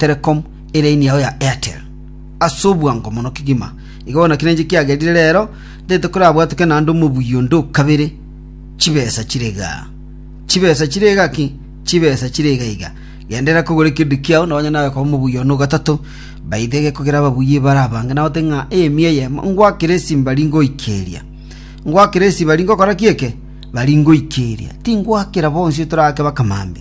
Telecom eline yao ya Airtel ase obwango mono kegima. Iga bono naki nenche kiagerire rero ndete korabwateke naende omobuya onde o kabere. Chibesa chire igaa. Chibesa chire iga ki? Chibesa chire iga iga. Genderera kogora ekerudu kiao na onye nawe koba omobuya one o gatato, baite gekogera ababuya ebara abange na ote ng'a eyemia eyemo ngwakere esimba ri ngoikeria. Ngwakere esiba ri ngokora ki eke? Bari ngoikeria. Tingwakera bonsi otorake bakamambe.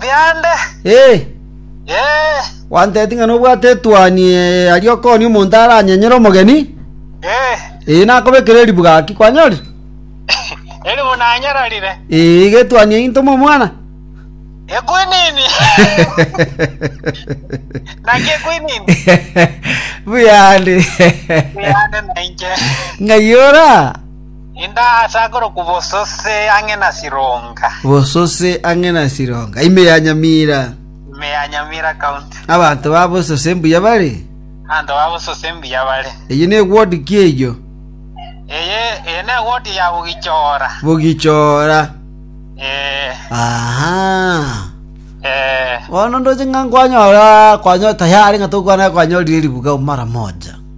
biande. Ee, Ee, gwanteeti ng'a nobwate etuoni ee, aria okoonia omonto aranyenyere omogeni, ee, ee, nakobekera eribu gaki, kwanyorire? eribu nanyararire. Ee, iga etuoni eyio ntoma omwana. Ekwinini. Naki ekwinini. Buyande. Biande nainche. Ng'ai ora? Indasakorokwa bosose ang'e na Sironga. Bosose ang'e na Sironga, ime ya Nyamira. Ime ya Nyamira County. Abanto ba bosose mbuya bare. Abanto ba bosose mbuya bare. Eyi ne ward ki eyio? Eye eye ne ward ya Bugichora. Bugichora. Eh. Aha. Eh. Bono ndoche ng'a kwanyora kwanyo tayari ng'a tokwana kwanyorire ribuga mara moja.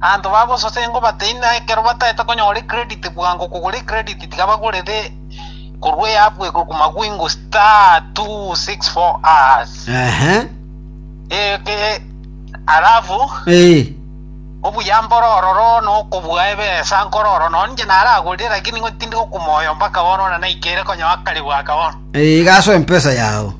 Abanto bagososa engo bateine na ekero bataete konyora ecredit bwango kogora ecredit tiga bagorere korwa eapu eye korwa mawingu star two six four hash Ehe. eke alafu Eh. obuya mbore ororo nokobua ebesa nkore oro no ninche naragorire lakini ng'o tindi gokumaya mpaka bono na naikere konyoa akare bwaka bono Eh, igaso empesa yao.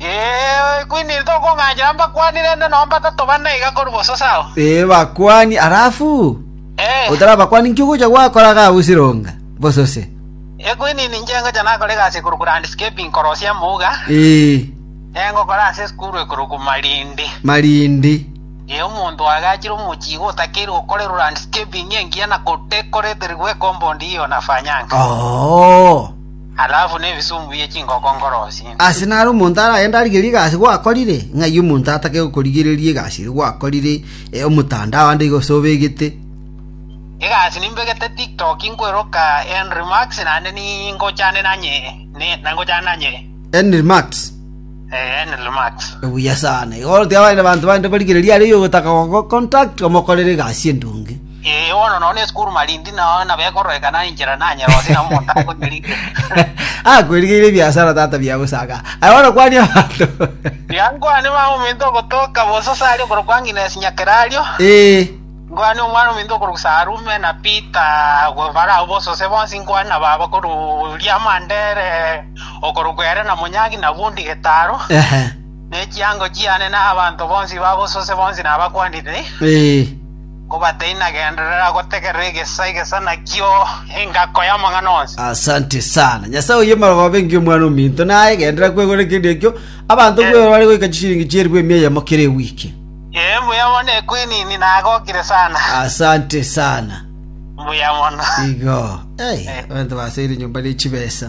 Ee, kwiniri tokong'anchera mbakwanire rende nonya batato bane iga korwa boso, sawa? Ee, bakwani. Alafu Ee, otarabakwani nki ogocha gwakora iga agwo Sironga? Boso se? ee, kwinini inche ngocha nakore egasi ekorokwa landscaping korosia mouga, Ee, ee, ngokora ase esukuru ekorokwa Malindi. Malindi. Ee, omonto oagachire omochie iga otakeirwe gokorerwa landscaping engiya na gotekoreterigwa ecompond eye onafanyanga. Oo. Alafu nebisumbu bie chingoko nkorosie. Ase naro omonto aragende arigerie egasi gwakorire, ng'ai omonto atake gokorigereria egasi eria gwakorire omotandao ande iga gose obegete? Egasi nimbegete TikTok nkweroka Henry Max naende ningochane nanye na ngochana nanye. Henry Max. Eh, Henry Max. Buya sana. Igo orotige abande banto bande barigererie aria oyogotaka gogo contact omokorere egasi endonge. Ee, bono nonya esukuru marindi nao nabekororekana enchera nanyerosie nabo omonto akonyerigereria. Akwerigeire ebiasara tata bia bosaga. Aye bono kwania abanto. Tiga nkwane mama ominto ogotoka bosose aria okorokwa Agnes Nyakerario, Ee. nkwane omwana ominto okorokwa Sarume na Peter agwo barao bosose bonsi, nkwane na baba korwa Riamandere okorokwa ere na Monyagi na Bundi Getaro, Ehe. ne chiango chiane na abanto bonsi ba bosose bonsi nabakwanire. Ee. Kobatainagenderera gotegerera egesa egesa nakio engako y'amang'ana onsi. Asante sana. Nyasae oye marogobe ngi omwana ominto naye genderera kwegora ekendi ekio. Abanto bweoro bare goika chishiringi chi'eribu emia eyemo kera ewiki. Ee, mbuya mono equinini nagokire sana. Asante sana. Mbuya mono. Igo. Hey, Eh. abanto baseire nyomba ne chibesa.